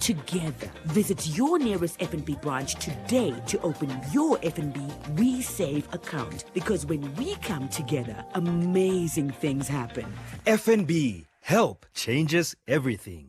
Together, visit your nearest FNB branch today to open your FNB We Save account because when we come together, amazing things happen. FNB, help changes everything.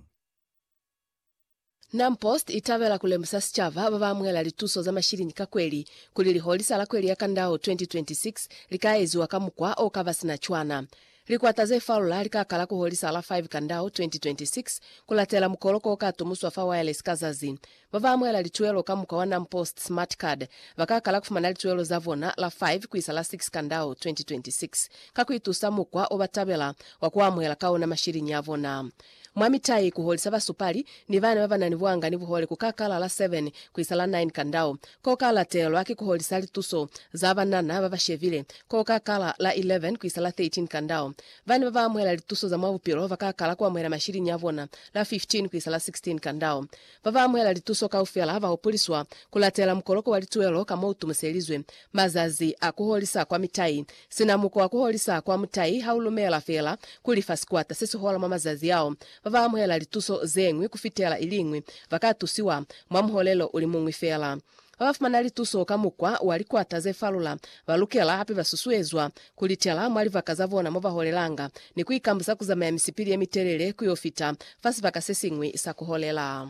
Nam Post i tabela ku lemusa sicaba ba ba amuhela lituso za mashiliñi ka kweli kuli liholisa la kweli ya Kandao 2026 li ka eziwa ka mukwa o ka ba sina cwana. Likwata ze falula li ka kala ku holisa la 5 Kandau 2026 ku latela mukoloko o ka tumuswa fa wireless ka zazi. Ba ba amuhela lituelo ka mukwa wa NamPost Smart Card ba ka kala ku fumana lituelo za bona la 5 ku isa la 6 Kandau 2026 ka ku itusa mukwa o ba tabela wa ku amuhela ka ona mashiliñi a bona. Mwa mitai, ku holisa basupali ni bana ba ba na ni buanga ni buhole ku ka kala la 7 ku isa la 9 ka ndau. Ko ka latelwa ki ku holisa lituso za banana ba ba shebile, ko ka kala la 11 ku isa la 13 ka ndau. Bana ba ba amuhela lituso za mwa bupilo ba ka kala ku amuhela mashiliñi a bona la 15 ku isa la 16 ka ndau. Ba ba amuhela lituso kaufela ba hupuliswa ku latela mukoloko wa lituelo ka mo u tumuselizwe. Mazazi a ku holisa kwa mitai Sina mukwa wa kuholisa kwa mutai ha u lumela fela kuli fa sikwata se si hola mwa mazazi ao, ba ba amuhela lituso ze ñwi ku fitela i liñwi ba ka tusiwa mwa muholelo u li muñwi fela. Ba ba fumana lituso ka mukwa wa likwata ze falula ba lukela hape ba susuezwa ku litela mwa libaka za bona mo ba holelanga ni ku ikambusa ku zamaya misipili ye mitelele ku yo fita fa sibaka se siñwi sa ku holela.